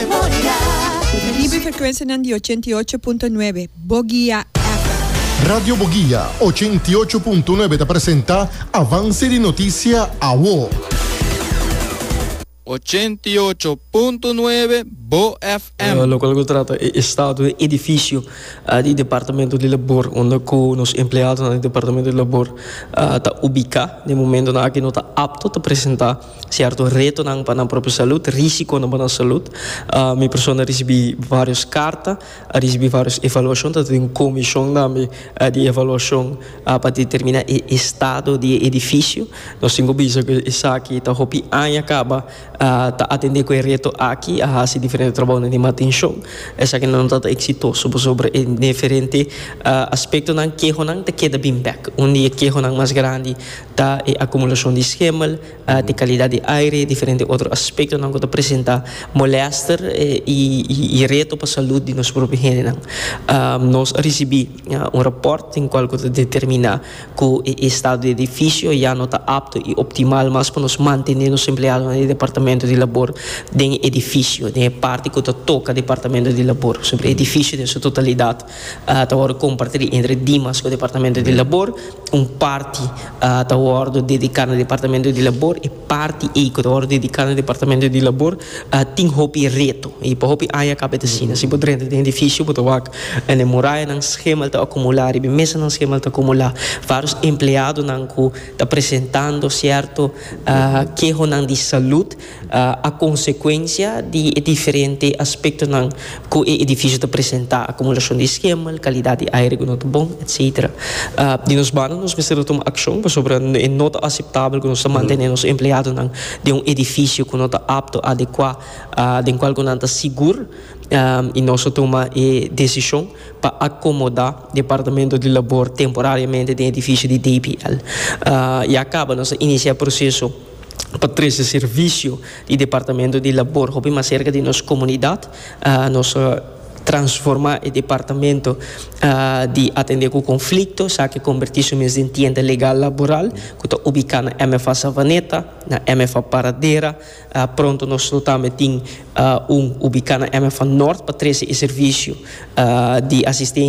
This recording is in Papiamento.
Ta riba e frekuensianan di ochenta i ocho punto nuebe Bogia FM. Radio Bogia ochenta i ocho punto nuebe ta presenta Avance di Noticia Awo. Ochenta i ocho punto nuebe Bo FM. Locual cu trata e estado di e edificio di Departamento di Labor unda cu nos empleadonan di Departamento di Labor ta ubica. Na e momentonan aki no ta apto ta presenta. Sierto retonan pa nan propio salud, risiconan pa nan salud. Mi persona a ricibi varios carta, a ricibi varios evaluacion, ta tin un comision tambe di evaluacion pa determina e estado di e edificio. Nos tin cu bisa cu esaki ta hopi aña caba ta atende cu e reto aki, a haci diferente trabaonan di mantencion. Esaki no ta ta exitoso pasobra e diferente aspectonan, kehonan ta keda bin bek. Un di e kehonan mas grandi Ta e akumulacion di schemel, di calidad di aire, diferente otro aspectonan cu ta presenta molester y reto pa salud di nos propio hendenan. Nos a ricibi un rapport den cual cu ta determina cu e estado di edificio ya no ta apto y optimal mas pa nos mantene nos empleadonan di departamento di labor den e edificio, den e parti cu ta toca departamento di labor. Edificio den su totalidad Ta wordo kompartí entre Dimas ku Departamento di Labor. Un parti ta wordo dediká na Departamento di Labor. E parti ei ku ta wordo dediká na Departamento di Labor tin hopi reto i pa hopi aña a kaba e ta asina. Si bo drenta den edifisio bo ta wak na e murayanan skemanan ta akumulá riba e mesanan skemanan ta akumulá. Vários empleadonan ku ta presentando sierto kehonan di salud. A consecuencia di e diferente aspectonan cu e edificio ta presenta, acumulacion di schemel, calidad di aire cu no ta bon, etc. Di nos banda nos mester ta tuma accion pasobra e no ta aceptabel cu nos ta mantene nos empleadonan den un edificio cu no ta apto, adecua, den cual cu nan ta sigur y nos a tuma e decision pa acomoda Departamento di Labor temporariamente den edificio di DPL. Ya caba nos a inicia e proceso. pa trese servisio di departamento di labor hopi mas serka di nos komunidat. Nos a transformá e departamento di atendé ku konflikto sa ke kombertí su mes den tienda legal laboral ku ta ubiká na MFA Savaneta, na MFA Paradera. Pronto nos lo tambe tin un ubiká na MFA Nort pa trese e servisio di asistensia.